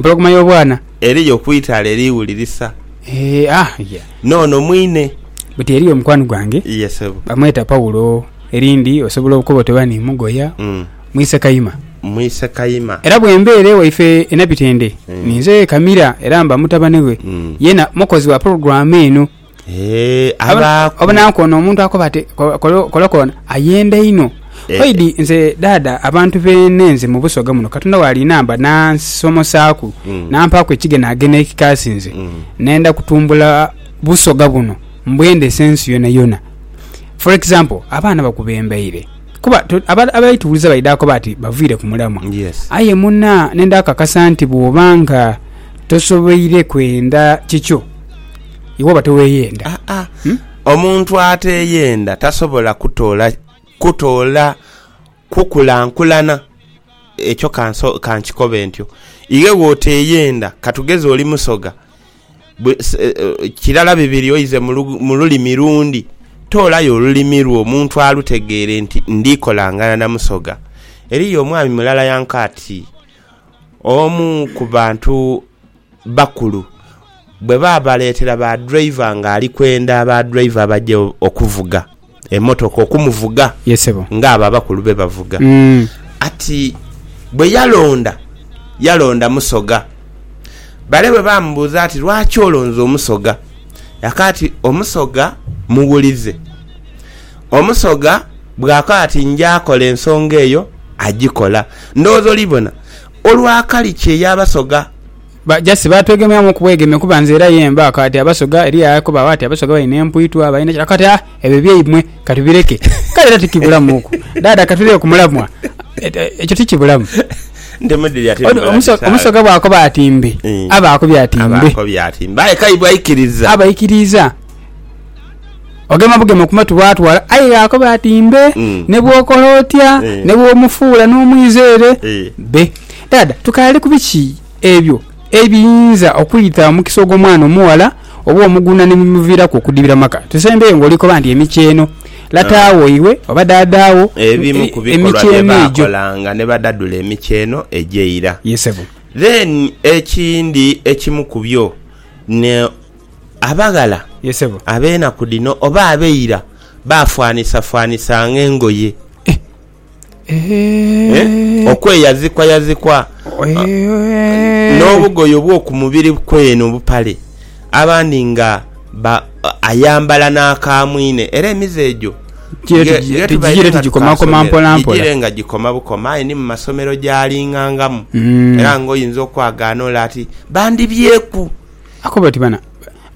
Empologoma y'obwana. Eriyo ku itaala eriwulirisa. Eeh ah ya. N'ono mwine. Buti eriyo mukwano gwange. Ye sebo. Bamweta Paulo. Erindi osobola okoba oti oba ni Mugoya. Mwise Kayima. Mwise Kayima. Era bwembeera ewaife e Nabitende ninze Kamira era mba mutabane we. Yena mukozi wa pulogulaamu eno. abaaku. Obonanku ono omuntu akoba ati kola koona ayenda inho. Oidi nze dada abantu beene nze mu Busoga muno Katonda walinamba nansomosaaku nampaaku ekigenaagena ekikaasi nze nenda kutumbula Busoga buno mbwendese ensi yonayona. For example abaana bakubembeire kuba abali tuwuliza baidha koba ati baviire ku mulamwa aye muna nenda kakasa nti bwoba nga tosoboire kwenda kikyo. iwe oba teweeyenda. Aa, omuntu ateeyenda tasobola kutoola kutoola kukulankulana. Ekyo ka nso ka nkikobe ntyo. Iwe bw'oteeyenda, ka tugeze oli Musoga, bwe se- eh, eh, kirala bibiri oize mu lu- mu lulimi lundi, toolayo olulimi lwo omuntu alutegeere nti ndi kolangana na Musoga. Eriyo omwami mulala yanka ati, Omu ku bantu bakulu bwe baabaleetera ba driver nga ali kwenda aba driver abaje okuvuga emotoka okumuvuga Ye sebo. nga abo abakulu be bavuga. Mm. Ati bwe yalonda, yalonda Musoga. Bale bwe baamubuuza ati lwaki olonze Omusoga? Yaka ati Omusoga muwulize. Omusoga bw'akoba ati nja kola ensonga eyo, agikola. Ndowooza olibona. Olwa kali kye yabasoga. Ba just batwegemyamu ku bwegeme kuba nze era ye mba kati abasoga eriyo akobagho ati abasoga balina empwitwa balina ki kati ah ebyo byaimwe kati bireke kale era tikibulamu ku dada katulire ku mulamwa ekyo tikibulamu omusoga bwakoba ati mbe aba akobye ati mbe aye kaibwe aikiriza aba aikiriza. ogema bugema ku matu bwatwala aye yakoba ati mbe mm. ne bwokola otya eh. ne bwomufuula n'omwizeere eh. be dada tukaali ku biki ebyo ebiyinza okwita omukisa ogw'omwana omuwala oba omuguna ne bimuviiraku okudibira maka tusembeyo ng'olikoba nti emikyeno lataawo ah. iwe oba daadaawo ebimu ku bikolwa bye baakolanga ne badadula emikyeno egyeira then ekindi ekimu ku byo ne Abaghala ab'enaku dhino oba ab'eira baafanhisafwanhisa ng'engoye. Okweyazikwayazikwa n'obugoye obw'oku mubiri kwene, obupale, abandhi nga ayambala n'akamwine. Era emize egyo ghetughiire nga tukaasomera gigire nga gikoma bukoma, aye ni mu masomero gyalingangamu. Era ng'oyinza okwagaana ole ati, Bandibyeku! Akoba ati, Bana,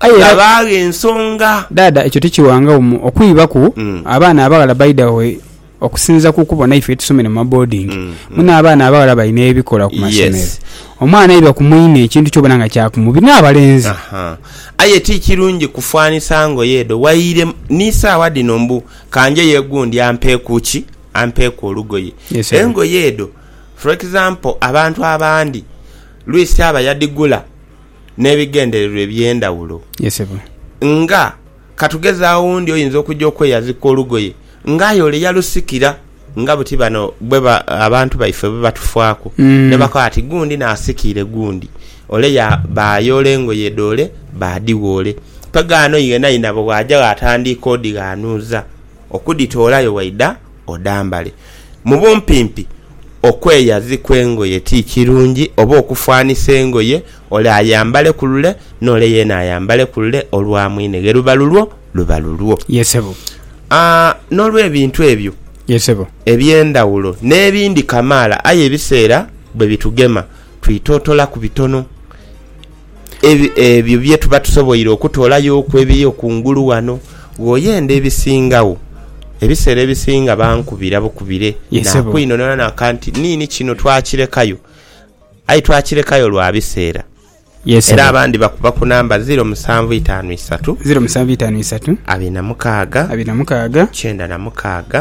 aye era. Ghabaagho ensonga. Dhaadha ekyo tikiwangagho mu okwibaku abaana abaghala baidha we okusinziira ku kubona ife etusomere mu maboodingi muno abaana abaghala bali n'ebikola ku masomero. Omwana aiba ku mwine ekintu kyobona nga kya kumubi n'abalenzi. Aye ti kirungi kufanisa ngoye edho waire ni saagha dhino mbu kanjeyo gundi ampeeku ki? Ampeeku olugoye. Engoye edho for example abantu abandi lwisi aba yadhigula n'ebigendererwa eby'endhawulo. Nga, ka tugeze awundi oyinza okuja okweyazika olugoye nga aye ole yalusikira nga buti bano bwe abantu baife bwe batufaaku ni bakoba bati gundi naasikiire gundi. Ole baayoola engoye dh'ole baadhigha ole. Togaano yenayenabe bw'aja bw'atandiika odhighanuuza okudhitoolayo waidha. odhambale. Mu bumpimpi, okweyazikwa engoye ti kirungi oba okufanisa engoye ole ayambale ku lule n'ole yeene ayambale ku lule olwa mwine ghe luba lulwo luba lulwo. Ye sebo. Aa, n'olw'ebintu ebyo Ye sebo. eby'endhawulo n'ebindi kamaala, aye ebiseera bwe bitugema twitootoolaku bitono. Ebyo bye tuba tusoboire okutoolayoku ebiyo kungulu ghano. Bw'oyenda ebisingagho, ebiseera ebisinga bankubira bukubire naakwinhonhona naka nti nini kino twakirekayo. Aye twakirekayo lwa biseera. Era abandi bakuba ku namba ziro musanvu itaanu isatu, abiri na mukaaga, kyenda na mukaaga.